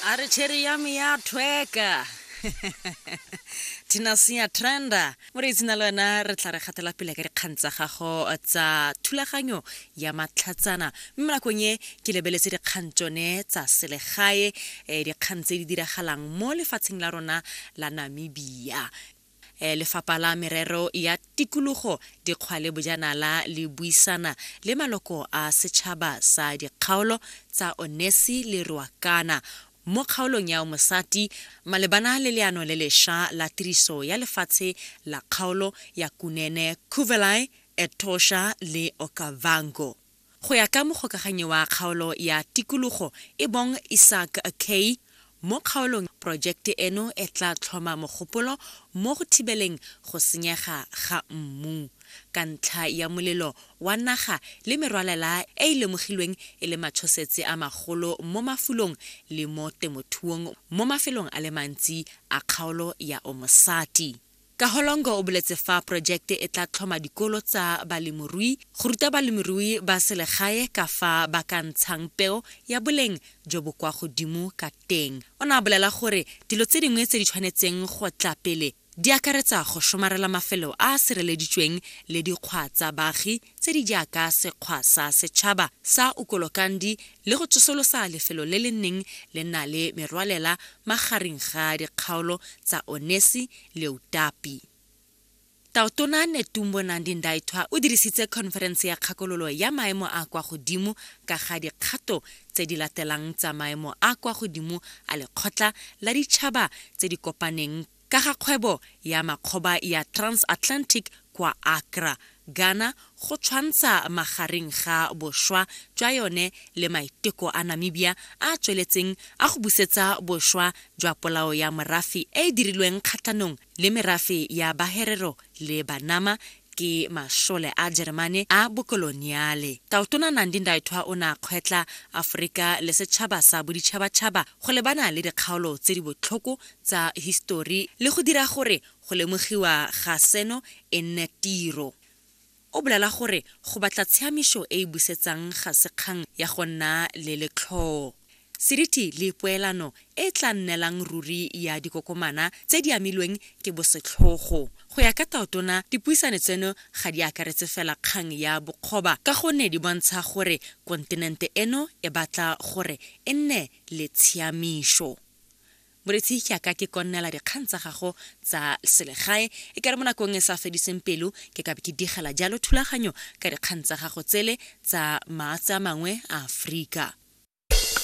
a re cherry ya me ya thweka tinasia trenda mo re itsena le wena re tla re gatela pele ka dikgang tsa gago tsa thulaganyo ya matlhatsana mme nakong e ke lebeletse dikgang tsone tsa selegae um dikgang tse di diragalang mo lefatsheng la rona la namibia Lefapha la Merero ya Tikologo, Dikgwa le Bojanala le buisana le maloko a setšhaba sa dikgaolo tsa Onesi le Ruacana mo kgaolong ya Umosati malebana le leano le lesha la tiriso ya lefatshe la kgaolo ya Kunene, Cuvelae, Etosha le Okavango. Go ya ka mogokaganyi wa kgaolo ya tikologo e bong Isaac Kay, mo kgaolong porojekte eno e tla tlhoma mogopolo mo go thibeleng go senyega ga mmu ka ntlha ya molelo wa naga le merwalela e e lemogilweng e le matshosetse a magolo mo mafulong le mo temothuong mo mafelong a le mantsi a kgaolo ya Omosati. Kaholongo o boletse fa porojekte e tla tlhoma dikolo tsa balemorui go ruta balemirui ba selegae ka fa ba ka ntshang peo ya boleng jo bo kwa godimo ka teng. O ne a bolela gore dilo tse dingwe tse di tshwanetseng go tla pele di akaretsa go somarela mafelo a a sireleditsweng le dikgwa tsa baagi, tse di jaaka sekgwa sa setšhaba sa Ukolokandi le go tsosolosa lefelo le le neng le na le merwalela magareng ga dikgaolo tsa Onesi le Utapi. Taotona Netumbo Nandi Ndaitwah o dirisitse khonferense ya kgakololo ya maemo a kwa godimo ka ga dikgato tse di latelang tsa maemo a kwa godimo a Lekgotla la Ditšhaba tse di Kopaneng Ka ga kgwebo ya makgoba ya Transatlantic kwa Accra, Ghana go tshwantsha magareng ga bošwa jwa yone le maiteko a Namibia a a tsweletseng a go busetsa bošwa jwa polao ya morafe e e dirilweng kgatlhanong le merafe ya Baherero le Banama ke mašole a Jeremane a bokoloniale. Taotona Nandi Ndaitwah o ne a kgwetla Aforika le setšhaba sa boditšhabatšhaba go lebana le dikgaolo tse di botlhoko tsa histori le go dira gore go lemogiwa ga seno e nne tiro. O bolala gore go batla tshiamišo e e busetsang ga se kgang ya go nna le letlhoo. Seriti le poelano e e tla nnelang ruri ya dikokomana tse di amilweng ke bosetlhogo. Go ya ka Taotona, dipuisano tseno ga di akaretse fela kgang ya bokgoba ka gonne di bontsha gore kontinente eno e batla gore e nne le tshiamišo. Moretsi, ke a ka ke konnela dikgang tsa gago tsa selegae, e kare mo nakong e sa fediseng pelo ke ka ke digela jalo thulaganyo ka dikgang tsa gago tsele tsa maatse a mangwe a Aforika.